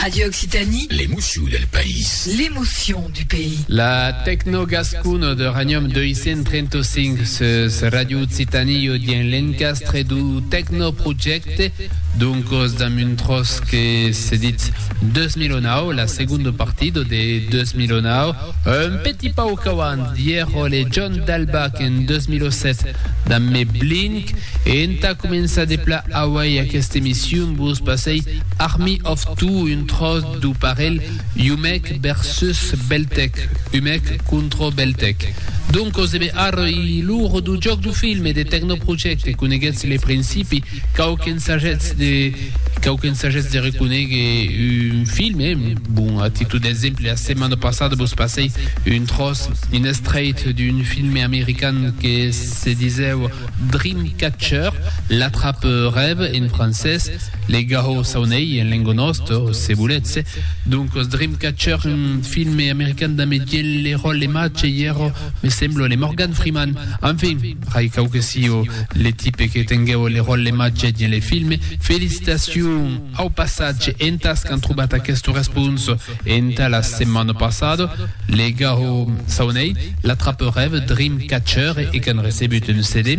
Radio Occitanie. L'emocion del país. L'emocion du pays. La tecno gascona de Ranium 235 sus Radio Occitanie o dien l'encastre du tecno projecte d'un cos d'un muntros que se dit 2009, la seconda partida de 2009. Un petit pauc auant Viejo Legion d'Albac en 2007 damb Me Blink e entà començar de pla auei aquesta emission vos passei Army of Two un tròç d'o parelh Umek versus Beltec, Umek contro Beltec. Doncos ebe arroi lo rodojòc d'o film e de Technoproject e coneguetz le principi Quauquens sagèths de quauquens sagèths de reconéguer un film, eh? Bon, a títol d'exemple, la setmana passada vos passèi un tròç, un estrèit d'un filme american que se disèu Dreamcatcher, L'atrape-rève en francés, Le garrot s'auneille en lenga nòsta, se volètz, eh? Doncas, Dreamcatcher, un filme american damb Etienne Leroy-Lemache, i èra Me semblo le Morgan Freeman. Enfin, rai cau que sio le tipe que tenguèu le ròl le mas gèt dins le film. Felicitacion! Au passatge, entas qu'an trobat aquesta responsa entà la setmana passada, legau çò n'ei, L'Attrape-rève, Dreamcatcher e qu'an recebut un CD.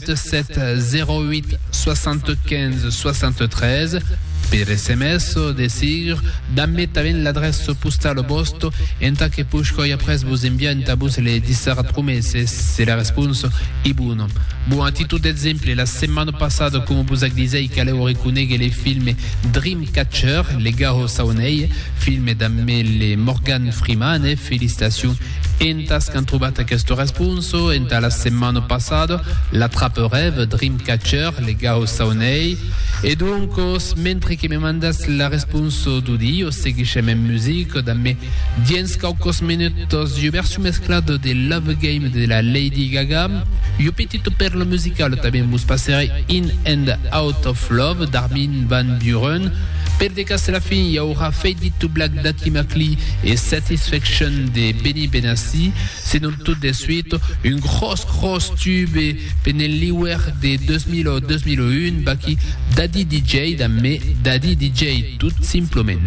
77 08 75 73 per sms o de sigur dambe tanben l'adrèça postala vòsta entà que pushoi après vos enviar entà vos le dissar promeses se la responsa e bona. Bon, a títol d'exemple, la setmana passada, coma vos ac disèi, calèu reconéguer le filme Dreamcatcher, Legajo Saunèi, filme dambe le Morgan Freeman, e felicitacion Entas qu'an trobat aquesta responsa entà la setmana passada, l'atraperève Dreamcatcher, legau Saunei. E doncas, mentre que me mandas la responsa d'audio, seguishem en musica damb me. Diens quauques minutas, ua version mesclada de Love Game de la Lady Gaga, ua petita pèrla musicala tanben vos passèré In and Out of Love d'Armin van Buuren. Per de cas la fin i aurà Fade It to Black d'Atty McLee, E satisfection de Benny Benassi, se non tot de suit, un gròs gròs tube pendent l'iuèr de 2000 o 2001, vaqui Daddy DJ damb me Daddy DJ, tot simplement.